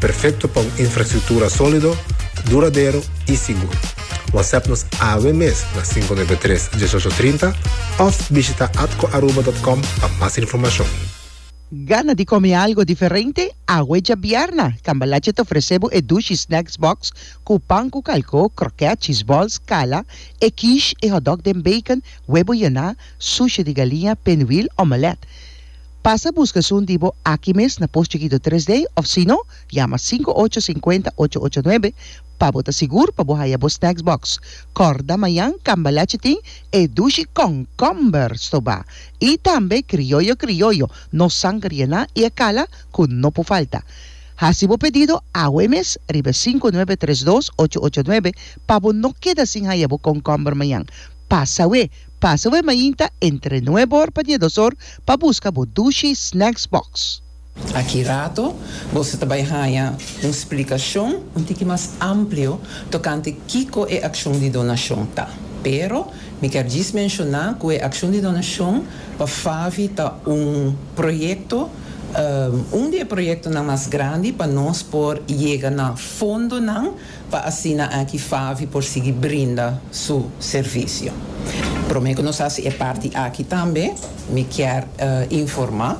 Perfecto pa un infrastructura solido, duradero y sigur. Whatsapp nos awe mes na cinco nuebe tres, diesocho trinta of bishita atcoaruba.com pa mas informacion. Gana di come algo diferente? Awe djabierna, Cambalache ta ofrece bo e Dushi Snacks Box cu pan cu calco, croquet, cheese balls, cala, e quiche, e hotdog den bacon, webo yena, sushi di galinha, pinwheel, omelette. Pasa buska esun di bo aki mes na Post Chikito Tres Day of sino yama sinku ocho sinkuenta ocho ocho nuebe pa bo ta sigur pa bo haya bo snacks box. Kòrda mañan Cambalache tin e dushi kònkòmber stobá i tambe krioyo krioyo no sanger yená i e kala ku no por falta. Hasi bo pedido awe e mes riba e sinku nuebe tres dos ocho ocho nuebe pa bo no keda sin haya bo kònkòmber mañan. Pasa we Pasa bo e mainta entre nue bor pa diedosor pa busca bo Dushi Snacks Box. Aki rato boso ta bai haña un splicacion un tiki mas amplio tocante kico e accion di donacion ta, pero mi kier djis menciona cu e accion di donacion pa FAVI ta un proyecto, un di e proyectonan mas grandi pa nos por yega na fondonan pa asina aki Favi por sigui brinda su servisio. Prome ku nos hasi e parti aki tambe, mi kier informá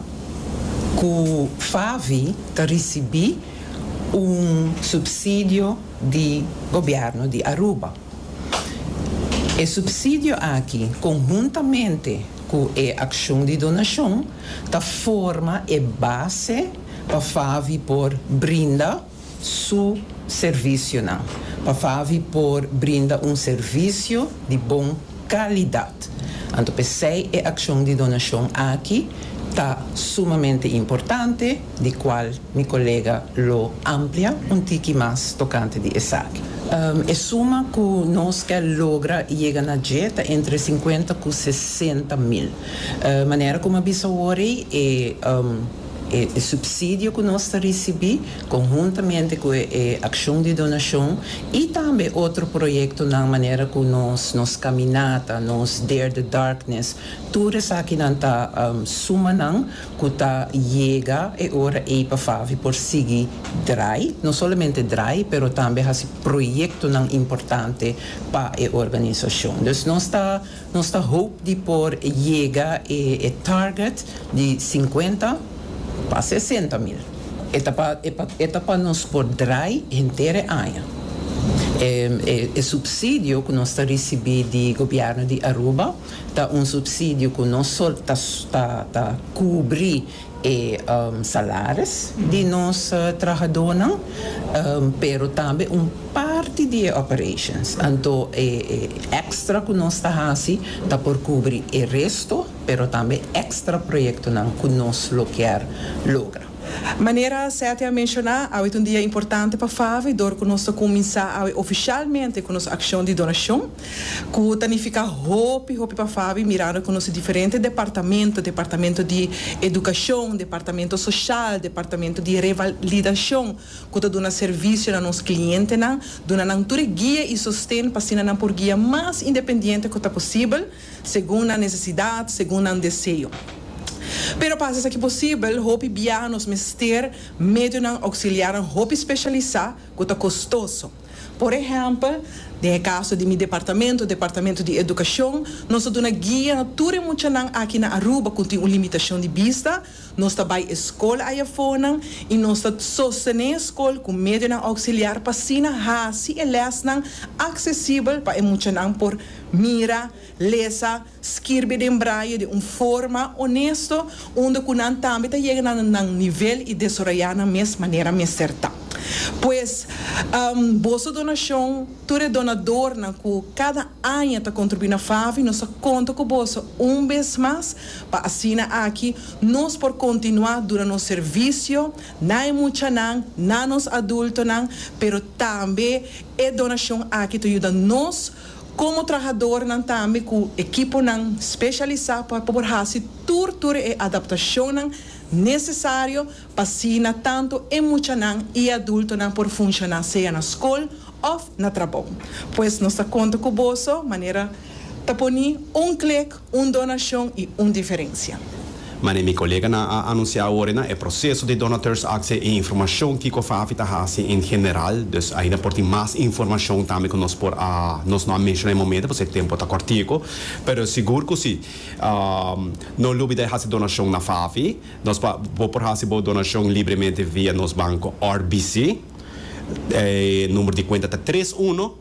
ku Favi ta risibí un supsidio di gobièrnu di Aruba. E supsidio aki, konhuntamente ku e akshon di donashon, ta forma e base pa Favi por brinda su servisionan pa Favi por brinda un servisio di bon kalidat. Anto p'esei e akshon di donashon aki ta sumamente importante, di kual mi kolega lo amplia un tiki mas tokante di esaki. E suma ku nos ke logra yega na dje ta entre sinkuenta ku sesenta mil. Manera ku mi a bisa awor ei, e. E supsidio ku nos ta risibí, konhuntamente ku e akshon di donashon i tambe otro proyektonan manera ku nos nos kaminata, nos Dare the Darkness, tur esakinan ta sumanan ku ta yega e ora ei pa Favi por sigui drai, no solamente drai, pero tambe hasi proyektonan importante pa e organisashon. Dus nos ta. Nos ta hoop di por yega e target di sinkuenta pa sesenta mil. E ta pa nos por drai henter e aña. E supsidio ku nos ta risibí di Gobièrnu di Aruba ta un supsidio ku no solo ta kubrí. e salaris di nos trahadonan, pero tambe un parti di e operations. Anto e extra cu nos ta haci ta por cubri e resto, pero tambe extra proyectonan cu nos lo kier logra. Manera Satya a menciona, awe ta un dia importante pa Favi dor cu nos ta cuminsa awe oficialmente cu nos accion di donacion. Cu ta nifica hopi hopi pa Fabi mirando cu nos diferente departamento, departamento di educacion, departamento social, departamento di revalidacion cu ta duna servicio na nos clientenan, duna nan tur e guia y sosten pa asina nan por guia mas independiente cu ta posibel, segun nan necesidad, segun nan deseo. Pero pa haci esaki posibel, hopi biaha nos mester medionan auxiliarnan hopi specialisa cu ta costoso. Por ehèmpel, den e kaso di mi departamento, Departamento di Edukashon, nos ta duna guia na tur e muchanan aki na Aruba ku tin un limitashon di bista, nos ta bai e skol ayafonan i nos ta sostené e skol ku medionan ouksiliar pa asina hasi e lèsnan aksesibel pa e muchanan por mira, lesa, Skirbi den braye den un forma onesto unda ku nan tambe ta yega na nan nivel i desaroyá nan mes manera mester ta. Pues, boso donashon, tur e donadornan ku kada aña ta kontribuí na FAVI, nos ta konta ku boso un bes mas pa asina aki nos por kontinuá duna nos servisio na e muchanan, na nos adultonan, pero tambe e donashon aki ta yuda nos. Komo trahadornan tambe ku ekiponan speshalisá pa por hasi tur tur e adaptashonnan nesesario pa asina tantu e muchanan i adultonan por funshoná sea na skol òf na trabou. Pues nos ta konta ku boso manera ta poni un klik. Un donashon i un diferensia. Manera mi koleganan a anunsiá awor na e proseso di Donateurs Actie e informashon kiko Fafi ta hasi en general, dus ainda por tin mas informashon tambe ku nos por a nos no a menshoná e momento pasobra e tempu ta kòrtiku, pero sigur ku si. No lubida e hasi donashon na Fafi. Nos por bo por hasi bo donashon libremente via nos banko RBC. E number di kuenta ta tres uno.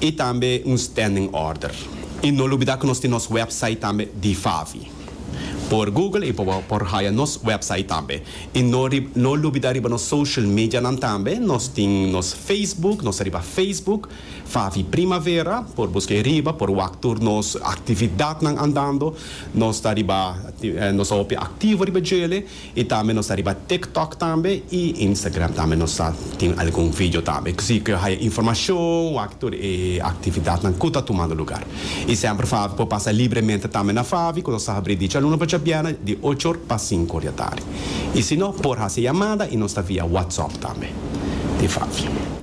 y tambe un standing order. Y no lubida cu nos tin nos website tambe di Favi. Por Google y por haya nos website tambe. Y no no lubida riba nos social medianan tambe, nos tin nos Facebook, nos ta riba Facebook, Favi Primavera, por busca ahi riba, por wak tur nos actividadnan andando, nos ta riba, nos ta hopi activo riba djele. Y tambe nos ta riba TikTok tambe y Instagram tambe nos ta tin algun video tambe. Cosi cu yo haya informacion wak tur e actividadnan cu ta tumando lugar. Y semper Favi por pasa libremente tambe na Favi cu nos ta habri di djaluna pa djabièrnè di ocho or pa sinku or di atardi. Y si no por haci yamada y nos ta via WhatsApp tambe di Favi.